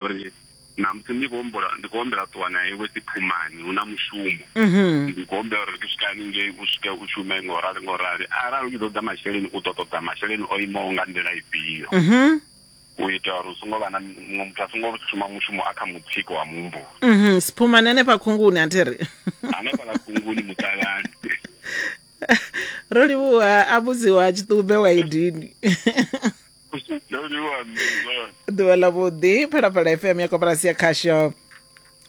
uri namusi ndi khou humbula ndi khou humbela ṱuwa na iwe dziphumani hu na mushumo mhm. ndi khou humbela uri ndi swika haningei u swike u shume nga u rali nga u rali arali u tshi ṱoḓa masheleni u ḓo ṱoḓa masheleni o imaho nga nḓila ifhio mhm. u ita uri u songo vha na muṅwe muthu a songo shuma mushumo a kha mutsiko wa muhumbulo mhm. siphumani hanefha khunguni a thi ri hanefha ḽa khunguni muṱalani ro livhuwa a vhudziwa tshiṱumbe wa idini ḓuvha ḽa vhuḓi phalaphala fm ya koporasi ya khasho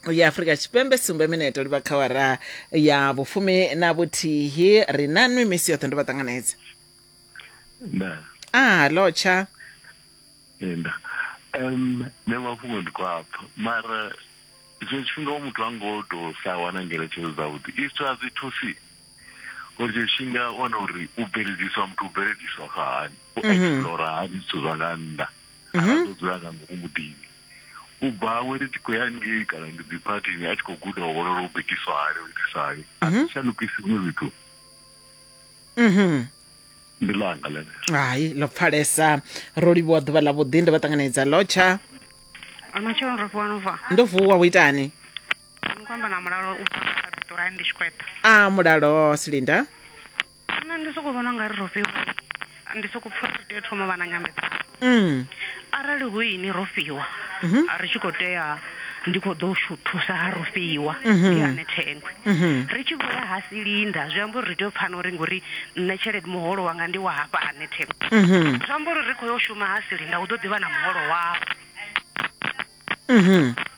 ya afrika tshipembe sumbe mineto livha kha wara ya vhufumi na vhuthihi ri na nwi misi yoṱhe ndo vha ṱanganedza a lotsha nda um nṋe mafhungo ndi khou apfa mara zwe tshifhinga muthu a ngo tou sa wana ngeletshedzo dzavhuḓi isto a zwi thusi uri tsho tshi nga wana uri u bveledziswa muthu u bveledziswa kha hani u mhm. explora hani zwithu zwa nga nnḓa mhm. kana ḓo dzula nga ngomu muḓini u bva awe ndi tshi khou ya ngei kana ndi dzi phathini a tshi khou guda u vhona uri u bikiswa hani u itiswa hani a mhm. si shandukisiwe zwithu ndi langa lene hai ḽo pfalesa ro livhuwa ḓuvha ḽa vhuḓi ndi vha ṱanganedza lotsha ndo vuwa wo itani Nkwamba na mulalo u bva kha Pitori ndi Tshikweta. A mulalo Silinda. Nṋe ndi soko vhona nga ri ro fhiwa ndi soko pfha ri tea thoma vha na nyambedzano. Mm. Arali hu ini ro fhiwa mhm. a ri tshi kho tea ndi kho ḓo shu thusa ha ro fhiwa mhm. ndi ane thengwe. Mhm. Ri tshi vhuya ha Silinda zwi amba uri ri tea u pfana uri ngori nṋe tshelede muholo wanga ndi wa hafha ha ne thengwe. Zwi amba uri ri kho yo shuma ha Silinda hu ḓo ḓi vha na muholo wawe. Mhm.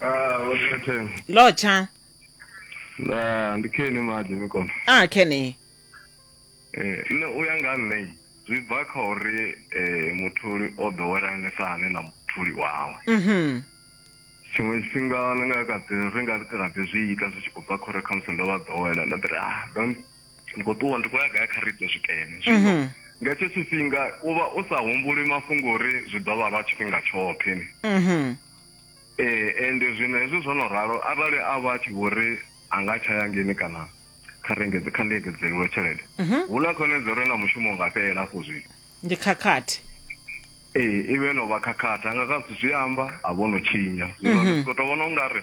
Ah, what's lotsha Na ndikheni manje mikona. ah kenny Eh, no uya nga nṋe zwi bva kha uri eh mutholi o ḓowelangesa hani na mutholi wawe. mhm Tshiṅwe tshifhinga ni nga kha ḓi ri nga ri kha ḓi zwi ita zwi tshi khou bva kha uri khamusi ndo vha ḓowela nda ḓi ri ah don't ndi khou ṱuwa ndi khou ya gai kha ri ite zwikene zwino mhm. nga hetsho tshifhinga u vha u sa humbuli mafhungo uri zwi ḓo vha lwa tshifhinga tshoṱhe ni mhm. ee ende zwino hezwi zwo no ralo arali a vha a tshi vho ri a nga tsha ya ngeni kana kha rengedze kha ndengedzeliwe tshelede mhm. hu na khonedza uri na mushumo nga fhelela afho zwino ndi khakhathi ee i vhe no vha khakhathi a nga ka zwithu zwi amba a vho no tshinya zwino ndi sokou tou vhona u nga ri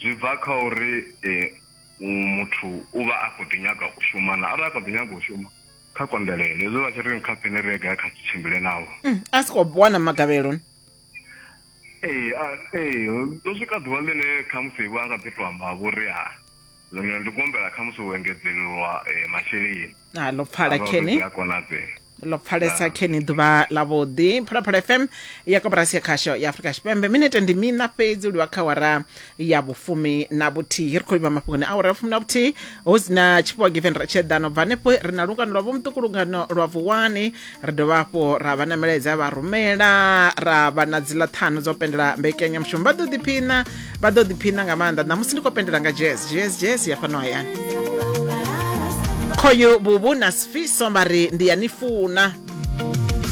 zwi bva kha uri um muthu u vha a khou ḓi nyaga u shuma na arali a khou ḓi nyaga u shuma kha konḓelele hezwi vha tshi ri kha pene ri ega kha tshimbile nawo mm, a si khou wana magavhelo ee ee ndo swika ḓuvha ḽine khamusi vho a nga ḓi to amba vho ri a zwino ndi kuombela khamusi u engedzelelwa eh, masheleni a ḽo pfala khene a konadzea ḽo pfalesa khe ni ḓuvha ḽavhuḓi phalaphala fm ya koporasi ya khasho ya afurika tshipembe minete ndi mina fhedzi u livha kha wara ya vhufumi na vhuthihi ri khou livha mafhungoni a wara ya vhufumi na vhuthihi hu si na tshifhiwa given ra tsheḓano bva hanefho ri na lungano lwa vhomuṱuku lungano lwa vuwani ri dovha hafhu ra vha na milaedza ya vha rumela ra vha na dziḽa ṱhanu dzo pendela mbekanyamushumo vha ḓo ḓiphina vha ḓo ḓiphina nga maanḓa ṋamusi ndi khou pendela nga jazz jazz jazz ya fhano hayani khoyu vhuvhu na sifiso vha ri ndi ya ni funa